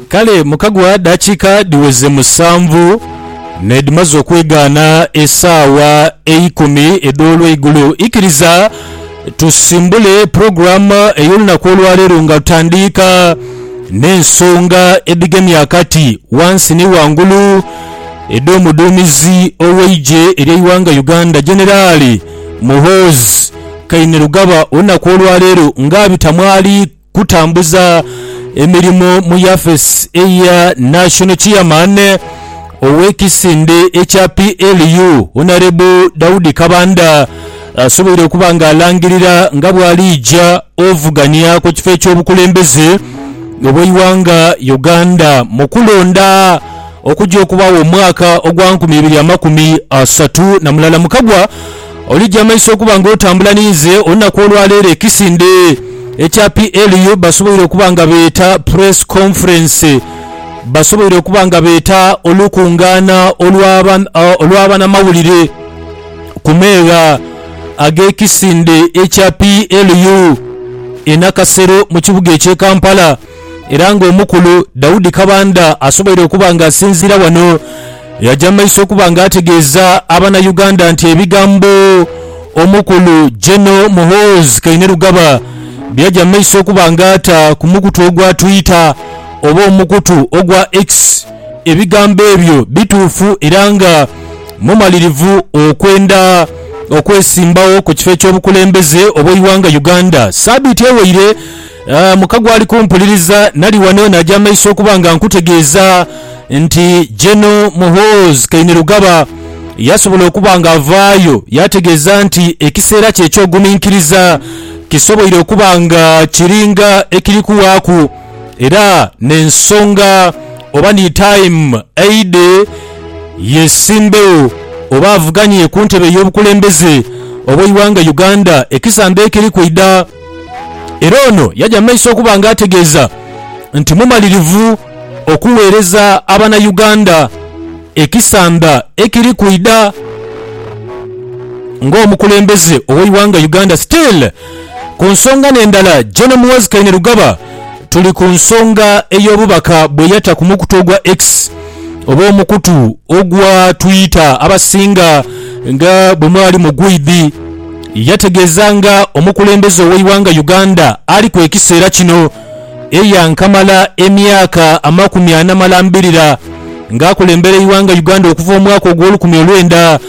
Kale mu kagwa dakiika dhiweze musanvu n'edhimaze okwegaana esaawa eikumi edh'olweigulo, ikiriza tusimbule pulogulaamu ey'olunaku olwaleero nga tutandiika n'ensonga edhigemye akati wansi ni wangulu edh'omuduumizi ow'eigye ery'eighanga Uganda Generaali Muhoozi Kainerugaba olunaku olwaleero nga abita mwali kutambuza emirimo mu yafesi eya National Chairman ow'ekisinde ekya PLU Honourable Daudi Kabanda asoboire okuba nga alangirira nga bw'aliija ovugania ku kifo eky'obukulembeze obw'eighanga Uganda mu kulonda okuja okubaagho omwaka ogwa nkumi ibiri amakumi asatu na mulala mu kagwa Oligya amaiso okuba nga otambula ninze olunaku olwaleero ekisinde ekya PLU basoboire okuba nga beeta press conference basoboire okuba nga beeta olukungaana olw'abanamawulire ku meegha ag'ekisinde ekya PLU e Nakasero mu kibuga eky'e Kampala. Era nga omukulu Daudi Kabanda asoboire okuba nga asinziira wano yaja mu maiso okuba nga ategeeza abana Uganda nti ebigambo omukulu Geno Muhoozi Kainerugaba byaja mu maiso okuba nga ata ku mukutu ogwa Twitter oba omukutu ogwa X ebigambo ebyo bituufu era nga mumalirivu okwenda okwesimbawo ku kifo eky'obukulembeze obw'eighanga Uganda. Sabiiti eweire, Ah, muka gwali kumpuliriza, nali wano naja amaiso okuba nga nkutegeeza nti Gen. Muhoozi Kainerugaba yasobola okuba nga avaayo yategeeza nti ekiseera kye eky'oguminkiriza kisoboire okuba nga kiringa ekiri kuwaaku era n'ensonga oba ni time aidhe yesimbewo oba avuganye kuntebe ey'obukulembeze obw'eighanga Uganda ekisamba ekiri kwidha. Era ono yaja mu maiso okuba nga ategeeza nti mumalirivu okuweereza abana Uganda ekisanda ekiri kwidha nga omukulembeze oweighanga Uganda. Still ku nsonga nendala Gen Muhoozi Kainerugaba tuli ku nsonga eyobubaka bweyata ku mukutu ogwa X oba omukutu ogwa Twitter abasinga nga bwemwali mugwidhi. Yategeeza nga omukulembeze ow'eighanga Uganda ali ku ekiseera kino eyankamala emyaka amakumi ana malambirira nga akulembera eighanga Uganda okuva omwaka ogw'olukumi olwenda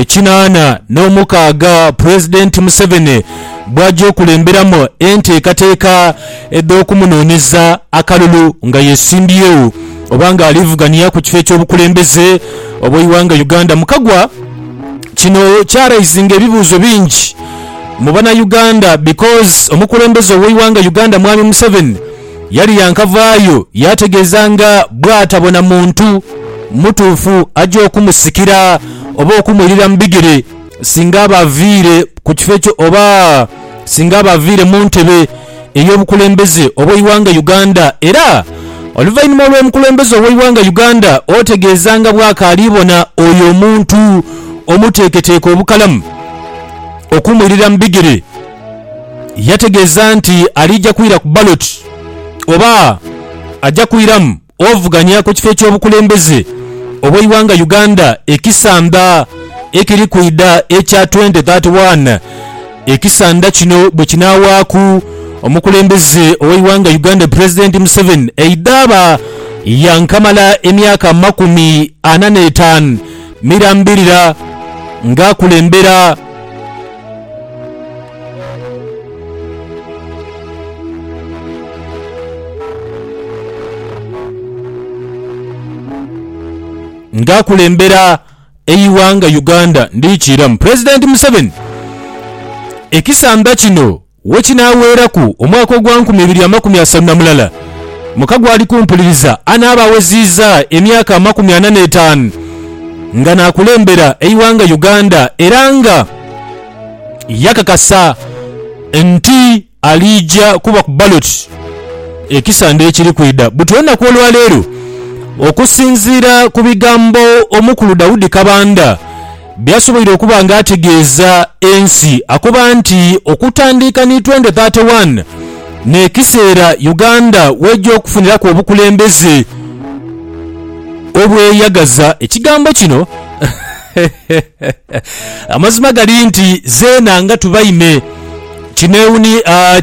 kinaana n'omukaaga Pulezidenti Museveni bwajja okulemberamu enteekateeka edh'okumunooneza akalulu nga yesimbyewo oba nga alivugania ku kifo eky'obukulembeze obw'eighanga Uganda mukagwa Kino kyaraisinga ebibuuzo bingi mu bana Uganda because omukulembeze oweighanga Uganda Mwami Museveni yali yankavaayo yategeeza nga bwatabona muntu mutuufu aja okumusikira oba okumwirira mu bigere singa aba aviire ku kifo ekyo oba singa aba aviire mu ntebe. ey'obukulembeze obw'eighanga Uganda era oluvainhuma olw'omukulembeze ow'eighanga Uganda otegeeza nga bwakaali bona oyo omuntu omuteeketeeke obukalamu okumwirira mu bigere yategeeza nti aliija kwira ku ballot oba aja kwiramu Ovuganya ku kifo eky'obukulembeze obw'eighanga Uganda ekisandha ekiri kwidha ekya twenti thati wani, ekisandha kino bwekinaawaaku omukulembeze ow'eighanga Uganda Pulezidenti Museveni eidhaaba yankamala emyaka amakumi ana n'etaanu mirambirira ng'akulembera. Nga akulembera eighanga Uganda ndikiiramu Pulezidenti Museveni ekisanda kino wekinaaweeraku omwaka ogwa nkumi ibiri amakumi asatu na mulala muka gwali kumpuliriza anaaba aweziiza emyaka amakumi ana n'etaanu nga naakulembera eighanga Uganda era nga yakakasa nti aliija kuba ku ballot ekisande ekiri kwidha. Buti olunaku olwaleero okusinziira ku bigambo omukulu Daudi Kabanda byasoboire okuba nga ategeeza ensi akoba nti okutandiika ni twende thate wani n'ekiseera Uganda weja okufuniraku obukulembeze obweyagaza. Ekigambo kino. Amazima gali nti zeena nga tubaime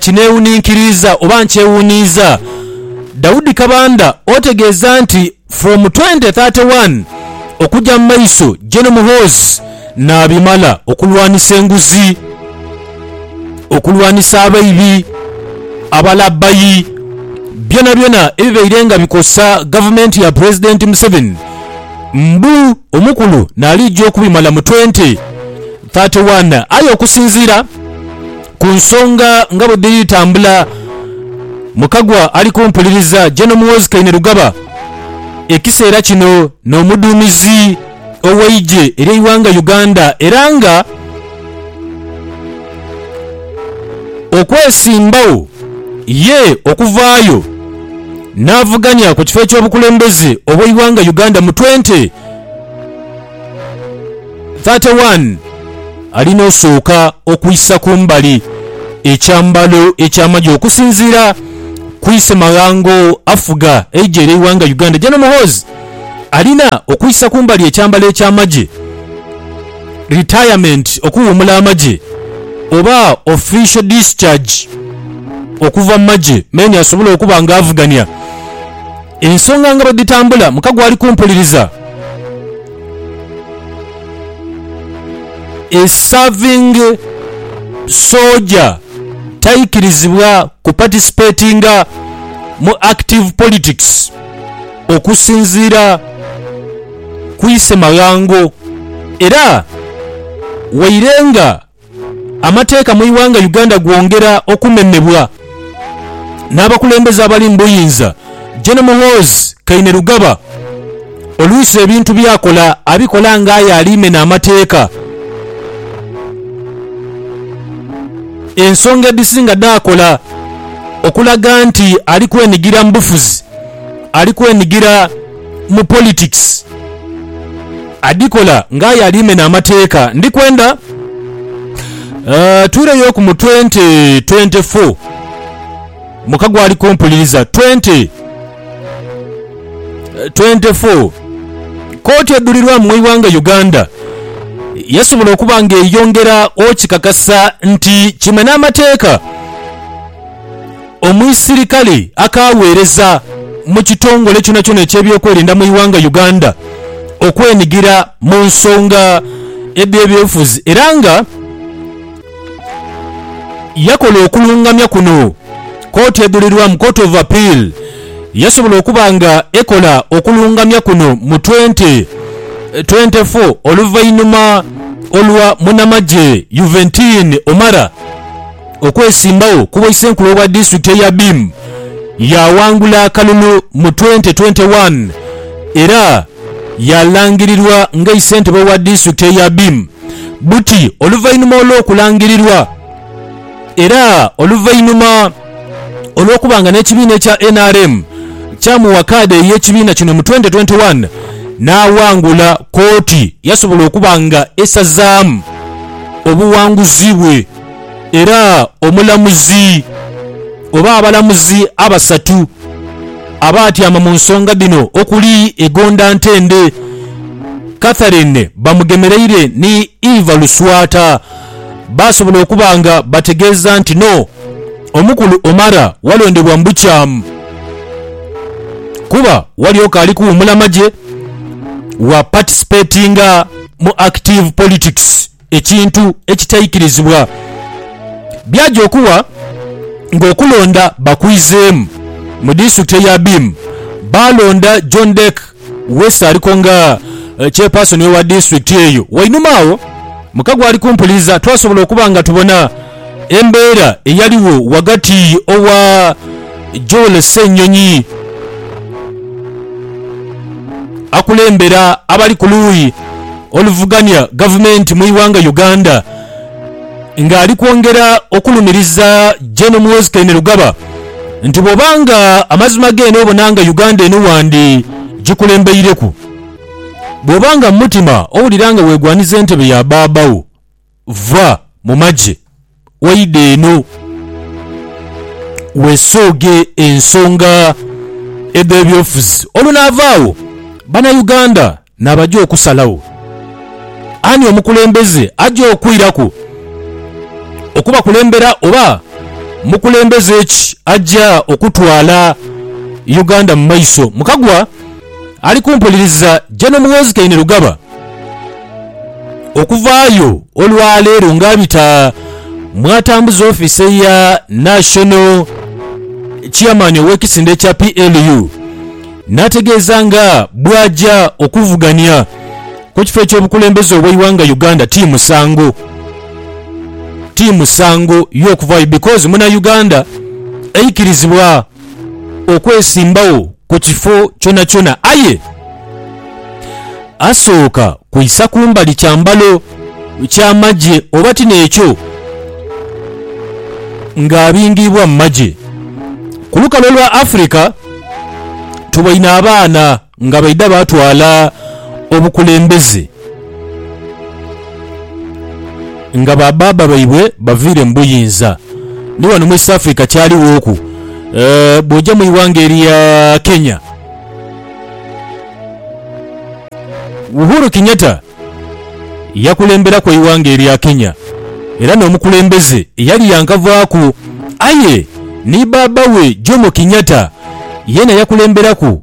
kineewuninkiriiza oba nkyewuniiza. Daudi Kabanda otegeeza nti from 2031 okugya mu maiso Gen Muhoozi naabimala okulwanisa enguzi, okulwanisa abaibi, abalabbayi byonabyona ebibaire nga bikosa gavumenti ya Pulezidenti Museveni. Mbu omukulu n'aliija okubimala mu twenti thati wani. Aye okusinziira ku nsonga nga bwe dhiri tambula, Mukagwa ali kumpuliriza Gen Muhoozi Kainerugaba ekiseera kino n'omuduumizi ow'eigye ery'eighanga Uganda era nga Okwesimbawo ye okuvaayo n'avuganya ku kifo eky'obukulembeze obw'eighanga Uganda mu twente thate wani, alina osooka okwisa ku mbali ekyambalo eky'amagye okusinziira ku Isemaghango afuga eidhye ly'eighanga Uganda Gen Muhoozi. Alina okwisa kumbali ekyambalo eky'amagye, retirement, okuwuumula amagye, oba official discharge okuva mu magye meni asobole okuba nga avugania ensonga nga bwedhitambula muka gwali kumpuliriza A serving soja taikirizibwa ku participatinga mu active politics. Okusinziira ku Isemaghango era waire nga amateeka mu ighanga Uganda gwongera okumemebwa n'abakulembeze abali mu buyinza, Gen Muhoozi Kainerugaba oluusi ebintu by'akola abikola nga aye ali mena amateeka ensonga edhisinga dh'akola okulaga nti ali kwenigira mu bufuzi. ali kwenigira mu politics adhikola nga aye ali mena amateeka ndi kwenda tuireyoku mu twenty twenty four muka gwali kumpuliriza twenty twenty four kooti edhulirwamu mu ighanga Uganda yasobola okuba nga eyongera okikakasa nti kimena amateeka. Omuisirikale akaaweereza mu kitongole kyonakyona eky'ebyokwerinda mu ighanga Uganda okwenigira mu nsonga edh'ebyobufuzi era nga yakola okulungamya kuno Kooti Edhulirwamu, Court of Appeal, yasobola okuba nga ekola okulungamya kuno mu twenty twenty four oluvainhuma olwa munamagye Juventin Omara. Okwesimbagho ku bwaisenkulu obwa disitulikiti eya Biim, yaawangula akalulu mu twente twente wani era yaalangirirwa nga eisentebe wa disitulikiti eya Biim buti oluvainhuma olw'okulangirirwa era oluvainhuma olw'okuba nga n'ekibiina ekya nrm kyamuwa kaadi ey'ekibiina kino mu twente twente wani n'awangula kooti yasobola okuba nga esazaamu obuwanguzi bwe. era omulamuzi oba abalamuzi abasatu abaatyama mu nsonga dhino okuli Egonda Ntende, Catherine Bamugemereire ni Eva Luswata baasobola okuba nga bategeeza nti no omukulu Omara walondebwa mu bukyamu kuba walyoka ali kuwumula magye wa participatinga mu active politics. ekintu ekitaikirizibwa byaja okuwa nga okulonda bakwizeemu. Mu disitulikiti eye Abim baalonda John Dec West aliko nga Chairperson owa disitulikiti eyo. Wainuma agho muka gwali kumpuliza twasobola okuba nga tubona. embeera eyaligho ghagati owa Joel Ssenyonyi akulembera abali ku luuyi oluvugania gavumenti mu ighanga Uganda nga ali kwongera okulumiriza Gen Muhoozi Kainerugaba nti bwoba nga amazima geene obona nga Uganda eno wandi gikulembeireku bwoba nga mu mutima owulira nga wegwaniza entebe ya baaba wo. Va mu magye oidhe eno weesooge ensonga edh'ebyobufuzi olwo naava agho Bannayuganda nabaja okusalagho ani omukulembeze aja okwiraku okubakulembera oba mukulembeze ki aja okutwala Uganda mu maiso. Mukagwa. Ali kumpuliriza je n'omughozi Kainerugaba okuvaayo olwaleero nga abita mw'atambuza ofiisi ya National Chairman ow'ekisinde kya PLU n'ategeeza nga bw'aja okuvugania ku kifo eky'obukulembeze obw'eighanga Uganda ti musango ti musango y'okuvaayo because muna Uganda eikirizibwa okwesimbagho ku kifo kyonakyona aye asooka kwisa kumbali kyambalo kya magye oba ti n'ekyo ng'abingiibwa mu magye. Ku lukalu olwa Africa tuboine abaana. Nga baidha baatwala obukulembeze, nga ba baaba baibwe baviire mu buyinza. Ni ghano mu East Africa kyalighoku. Bw'oja mu ighanga erya Kenya, Uhuru Kenyatta yakulemberaku eighanga erya Kenya era n'omukulembeze eyali yankavaaku. Aye ni baaba we Jomo Kenyatta yeena yakulemberaku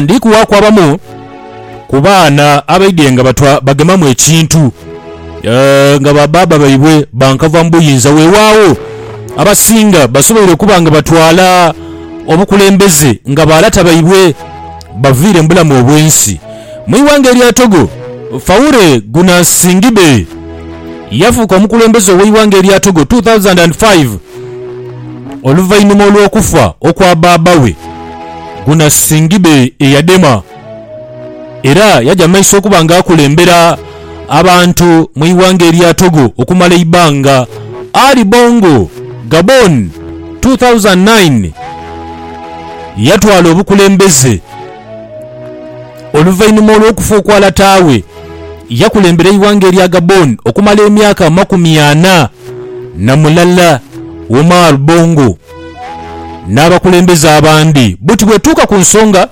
Ndi kuwaaku abamu ku baana abaidhie nga batwa bagemamu ekintu nga ba baaba baibwe bankava mu buyinza. Weewaawo, abasinga basoboire okuba nga batwala obukulembeze nga ba lata baibwe baviire mu bulamu obw'ensi. Mu ighanga erya Togo, Faure Gnassingbe yafuuka omukulembeze ow'eighanga erya Togo 2005 oluvainhuma olw'okufa okwa baaba we Gnassingbe eyadema era yaja mu maiso okuba nga akulembera abantu mu ighanga erya Togo okumala eibbanga. Ali Bongo, Gabon, 2009 yatwala obukulembeze. Oluvainhuma olw'okufa okwa lata we, yakulembera eighanga erya Gabon okumala emyaka amakumi ana na mulala. Omar Bongo n'abakulembeze abandi buti bwetuuka ku nsonga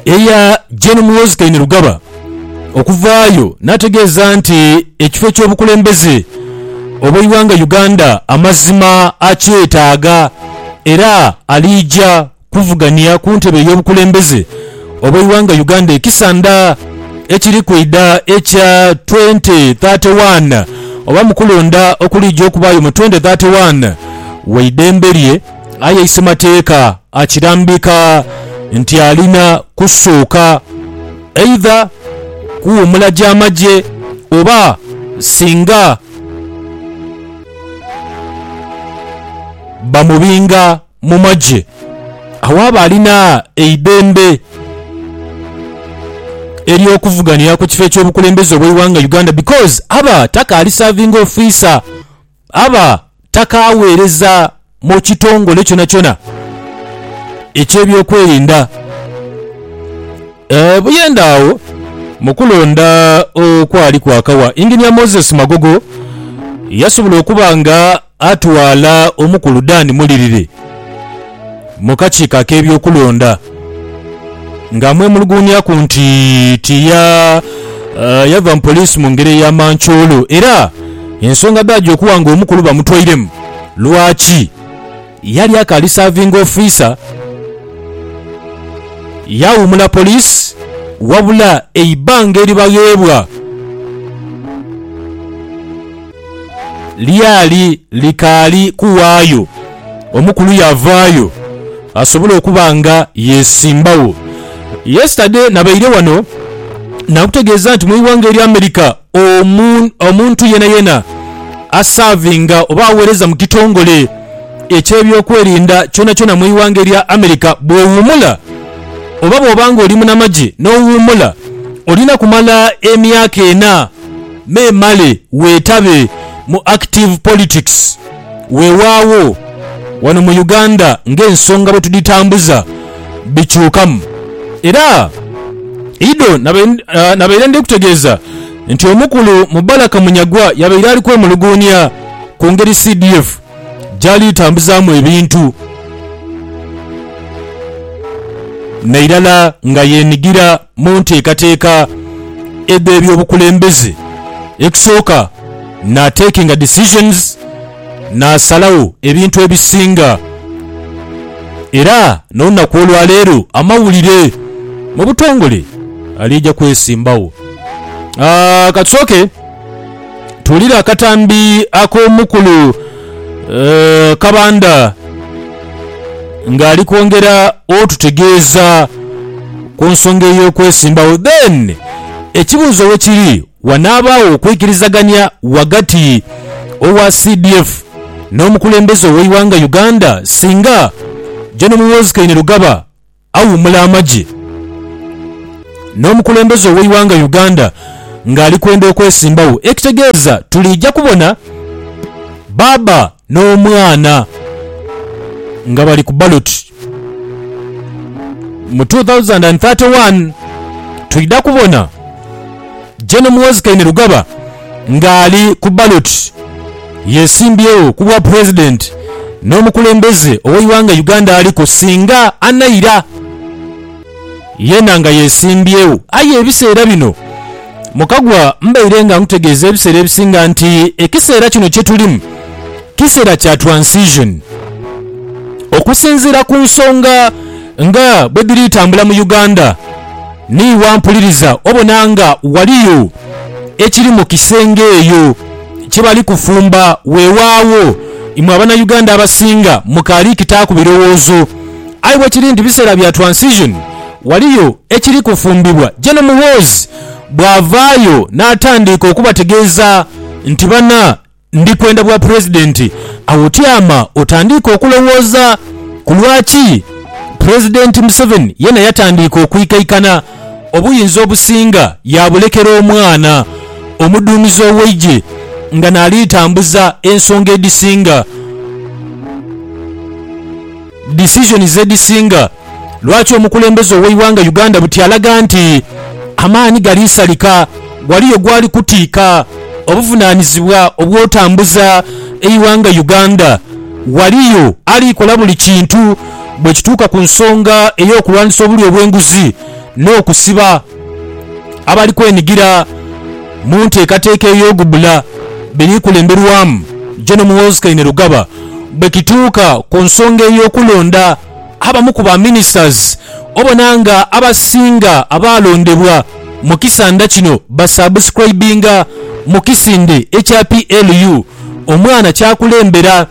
eya Gen Muhoozi Kainerugaba okuvaayo n'ategeeza nti ekifo eky'obukulembeze obw'eighanga Uganda amazima akyetaaga era aliija kuvugania ku ntebe ey'obukulembeze obw'eighanga Uganda ekisandha ekiri kwidha ekya twente thate waana oba mu kulonda okuliija okubaayo mu twente thate waana waidembe lye aye isemateeka akirambika nti alina kusooka eidha kuwuumula gya magye oba singa bamubinga. mu magye awaaba alina eidhembe ery'okuvuganira ku kifo eky'obukulembeze obw'eighanga Uganda because aba takaali serving officer, aba takaaweereza mu kitongole kyonakyona eky'ebyokwerinda. Buyende agho mu kulonda okwali kwakawa, Engineer Moses Magogo yasobola okuba nga Atwala omukulu Dan Mulirire mu kakiiko ak'ebyokulonda ng'amwemuluguunyaku nti tiya yava mu poliisi mu ngeri eya mancoolo era ensonga dh'aja okuwa ng'omukulu bamutwairemu lwaki yali akaali saavingi ofiisa yawuumula poliisi wabula eibbanga eribagheebwa Lyali likaali kuwaayo, omukulu yaavaayo asobole okuba nga yeesimbagho. Yesterday nabaire wano naakutegeeza nti mu ighanga erya America omuntu yenayena asaavinga oba aweereza mu kitongole eky'ebyokwerinda kyonakyona mu ighanga erya America bw'owuumula oba bw'oba ng'oli munamagye n'owuumula olina kumala emyaka ena Memale weetabe mu active politics. Weewaawo, wano mu Uganda ng'ensonga bwe tudhitambuza bikyukamu. Era Ido nabaire ndhikutegeeza nti omukulu Mubaraka Munyagwa yabaire ali kwemuluguunia ku ngeri CDF gy'ali tambuzaamu ebintu, na irala nga yeenigira mu nteekateeka edh'ebyobukulembeze ekusooka n'atakinga decisions, n'asalagho ebintu ebisinga. Era n'olunaku olwa leero amawulire mu butongole aliija kwesimbagho. Aa, ka tusooke. Tuwulire akatambi ak'omukulu eh, Kabanda ng'ali kwongera otutegeeza ku nsonga ey'okwesimbawo. Then ekibuuzo we kiri wanaabaawo okwikirizaganya ghagati owa CDF n'omukulembeze ow'eighanga Uganda singa Gen Muhoozi Kainerugaba Awuumula amagye n'omukulembeze ow'eighanga Uganda ng'ali kwenda okwesimbagho ekitegeeza tuliija kubona baaba n'omwana nga bali ku ballot mu two thousand and thirty one. Twidha kubona Gen Muhoozi Kainerugaba. ng'ali ku ballot yesimbyewo ku bwa Pulezidenti n'omukulembeze ow'eighanga Uganda aliku singa anaira yena nga yesimbyewo aye ebiseera bino Mukagwa mbaire nga nkutegeeza ebiseera ebisinga nti ekiseera kino kyetulimu kiseera kya transition okusinziira ku nsonga nga bwedhiri tambula mu Uganda. Ni wampuliriza obona nga waliyo ekiri mu kisenge eyo kye bali kufumba. Weewaawo, imwe Abanauganda abasinga mukaali kitaaku birowoozo. Aye bwekiri nti biseera bya transition, waliyo ekiri kufumbibwa. Gen Muhoozi bwavaayo natandiika okubategeeza nti bana. Ndi kwenda bwa Pulezidenti. Awo tyama otandiike okulowooza ku lwaki Pulezidenti Museveni yena yatandiika okwikaikana obuyinza obusinga yaabulekera omwana omuduumizi ow'eigye nga naali tambuza ensonga edhisinga. Decisions edhisinga lwaki omukulembeze oweighanga Uganda buti alaga nti amaani gali salika, ghaliyo gwali kutiika obuvunanizibwa obwotambuza eighanga Uganda, ghaliyo ali kola buli kintu bwekituuka ku nsonga eyokulwanisa obulyo obwenguzi n'okusiba. abali kwenigira mu nteekateeka ey'ogubbula biri kulemberwamu Gen Muhoozi Kainerugaba bwe kituuka ku nsonga ey'okulonda abamu ku ba ministers obona nga abasinga abaalondebwa mu kisanda kino ba subscribinga mu kisinde ekya PLU omwana kyakulembera.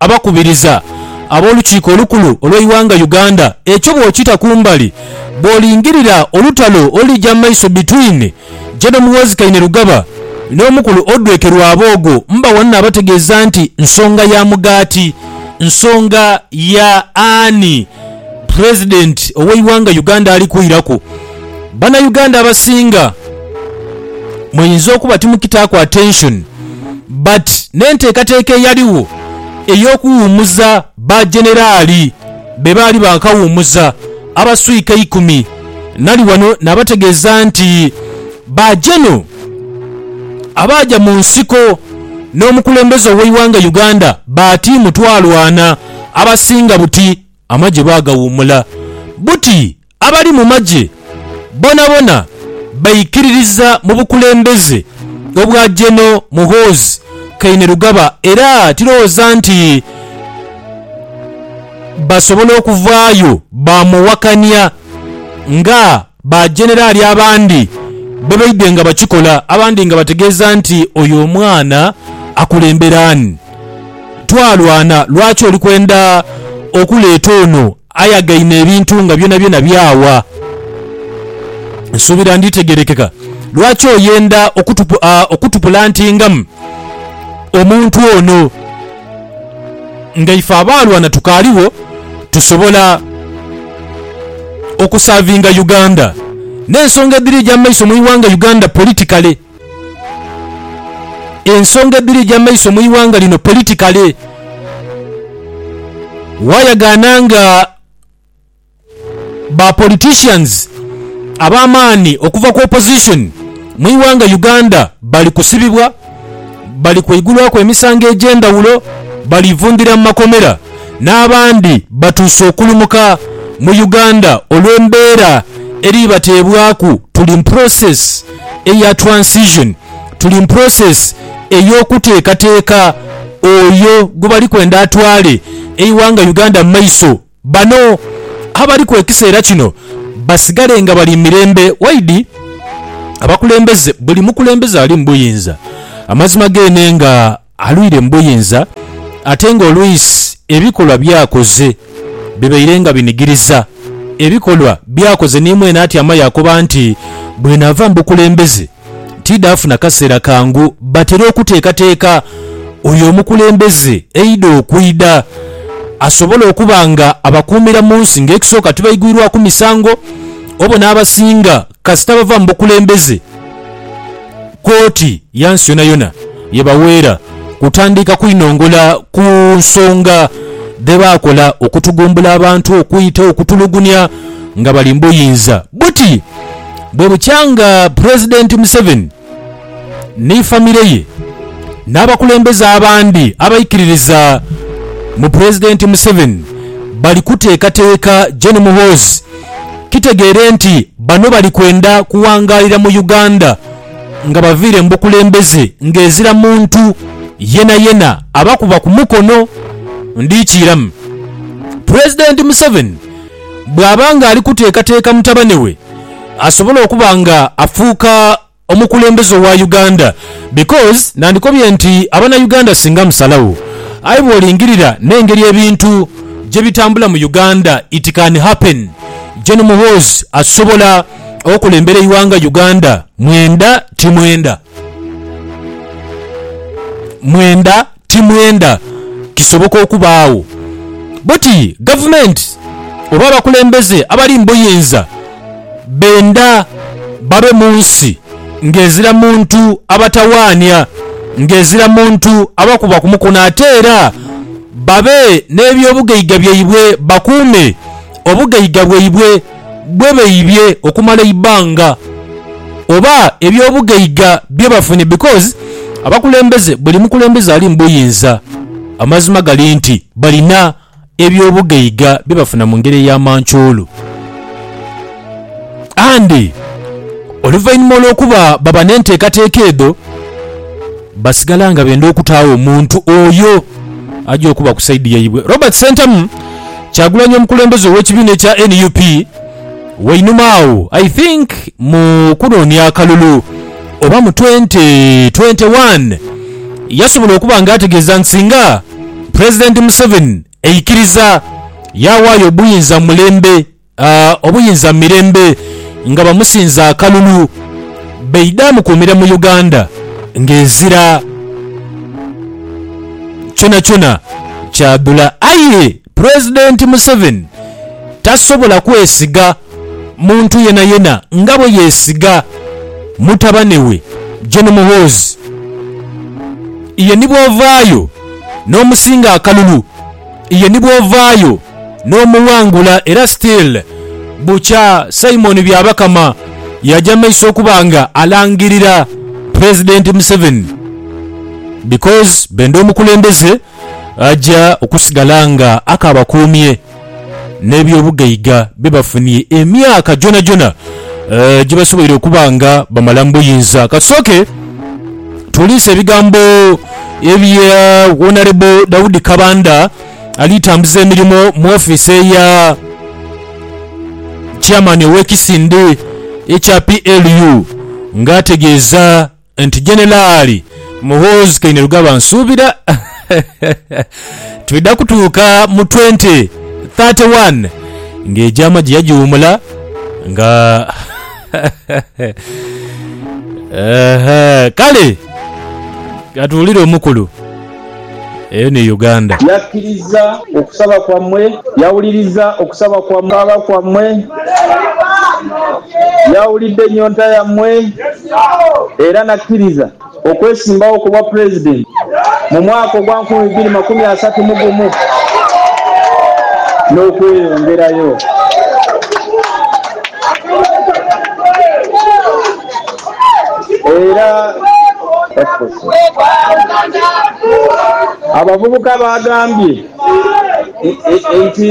abakubiriza ab'Olukiiko Olukulu olw'eighanga Uganda ekyo bw'okita kumbali bw'olingirira olutalo olulija mu maiso between General Muhoozi Kainerugaba n'Omukulu Odweke Rwaboogo mbagho naabategeeza nti nsonga ya mugaati nsonga ya ani President ow'eighanga Uganda ali kwiraku. Banayuganda abasinga muyinza okuba timukitaaku attention but n'enteekateeka eyaligho ey'okuwumuza ba Generali be baali baakawumuza abaswika eikumi nali wano nabategeeza nti ba Geno abaaja mu nsiko n'omukulembeze ow'eighanga Uganda baatiimu twalwana abasinga buti amagye baagawuumula buti Abali mu magye bonabona baikiririza mu bukulembeze obwa Geno Muhoozi Kainerugaba era tirowooza nti basobola okuvaayo baamuwakania nga ba Generali abandi bwe baidhye nga bakikola abandi nga bategeeza nti oyo omwana akulembera ani? Twalwana lwaki oli kwenda okuleeta ono Ayagaine ebintu nga byonabyona byawa. Nsuubira nditegeerekeka lwaki oyenda okutupulantingamu omuntu ono. Nga ife abaalwana tukaaligho, tusobola okusaavinga Uganda n'ensonga edhiri eja maiso mu ighanga Uganda politikale. Ensonga edhiri egy'amaiso mu ighanga lino politikale, waayagaana nga ba politicians ab'amaani okuva ku opposition mu ighanga Uganda bali kusibibwa, bali kweigulwaku emisango egy'endhawulo, bali vundhira mu makomera n'abandi batuuse okulumuka mu Uganda olw'embeera eri bateebwaku. Tuli mu process. eya transition tuli mu process ey'okuteekateeka oyo gwebali kwenda atwale eighanga Uganda mu maiso. Bano abaliku ekiseera kino basigale nga bali mu mirembe waidi abakulembeze buli mukulembeze ali mu buyinza amazima geenenga. Alwire mu buyinza ate nga olwisi ebikolwa by'akoze bibaire nga binigiriza. Ebikolwa by'akoze ni mwene atyama yaakoba nti, Bwenaava mu bukulembeze tiidha funa kaseera kangu batera okuteekateeka oyo omukulembeze eidha okwidha asobole okuba nga abakuumira mu nsi ng'ekisooka tibaigwirwaku misango obo n'abasinga Kasita bava mu bukulembeze, kkooti ya nsi yonayona yebaweera kutandika kwinongola ku nsonga dhebaakola okutugumbula abantu okwita okutulugunya nga bali mu buyinza. Buti bwebukyanga Pulezidenti Museveni ni famire ye n'abakulembeze abandi abaikiririza mu Pulezidenti Museveni bali kuteekateeka Gen Muhoozi. Kitegeere nti bano bali kwenda kuwangaalira mu Uganda nga baviire mu bukulembeze ng'ezira muntu yenayena abakuba ku mukono. Ndhikiiramu Pulezidenti Museveni. Bw'aba ng'ali kuteekateeka mutabane we asobole okuba ng'afuuka omukulembeze owa Uganda because nandikobye nti Abanauganda singa musalagho aye bw'olingirira n'engeri ebintu gye bitambula mu Uganda it can happen Gen Muhoozi asobola okulembera eighanga Uganda mwenda timwenda mwenda Ti mwenda kisoboka okubaagho bwoti gavumenti oba abakulembeze abali mu buyinza benda babe mu nsi ng'ezira muntu abatawaania, ng'ezira muntu abakuba ku mukono ate era babe n'eby'obugaiga byaibwe bakuume obugaiga bwaibwe. bwe baibye okumala eibbanga oba ebyobugaiga bye bafunye because abakulembeze buli mukulembeze ali mubuyinza amazima gali nti balina ebyobugaiga bye bafuna mungeri eya mancoolo and oluvainhuma olwokuba baba nenteekateeka edho Basigala nga benda okutaagho omuntu oyo aja okuba ku saidi yaibwe. Robert Ssentamu Kyagulanyi omukulembeze ow'ekibiina ekya nup wainuma agho I think mu kunoonia akalulu oba mu twenty twenty one yasobola okuba nga ategeeza nti singa Pulezidenti Museveni aikiriza yaawaayo obuyinza mu mulembe A Obuyinza mu mirembe nga bamusinza akalulu baidhe amukuumire mu Uganda ng'ezira kyonakyona kyadhula aye Pulezidenti Museveni tasobola kwesiga muntu yenayena nga bwe yeesiga mutabane we Gen Muhoozi. Ye ni bw'ovaayo n'omusinga akalulu. Ye ni bwovaayo n'omuwangula era still bukya Simon Byabakama yaja maiso okuba nga alangirira President Museveni because benda omukulembeze aja okusigala nga akabakuumye n'ebyobugaiga byebafunie emyaka gyonajyona gyebasoboire okuba nga bamala mu buyinza. Katusooke. Twolese ebigambo ebya Wonarebo Daudi Kabanda ali tambuza emirimo mu ofiisi eya Chairman ow'ekisinde ekya PLU nga ategeeza nti Jeneraali Muhoozi Kainerugaba nsuubira twidha kutuuka mu twenty thirty one nga egyama gye yagiwumula nga Kale ka tuwulire omukulu. Eyo ni Uganda. Yakkiriza okusaba kwammwe, yawuliriza okusaba kwammwe, yawulidde ennyonta yammwe, era n'akkiriza. okwesimbawo ku bwa Pulezidenti mu mwaka ogwa nkumi ibiri makumi asatu mu gumu n'okweyongerayo. Era abavubuka baagambye nti.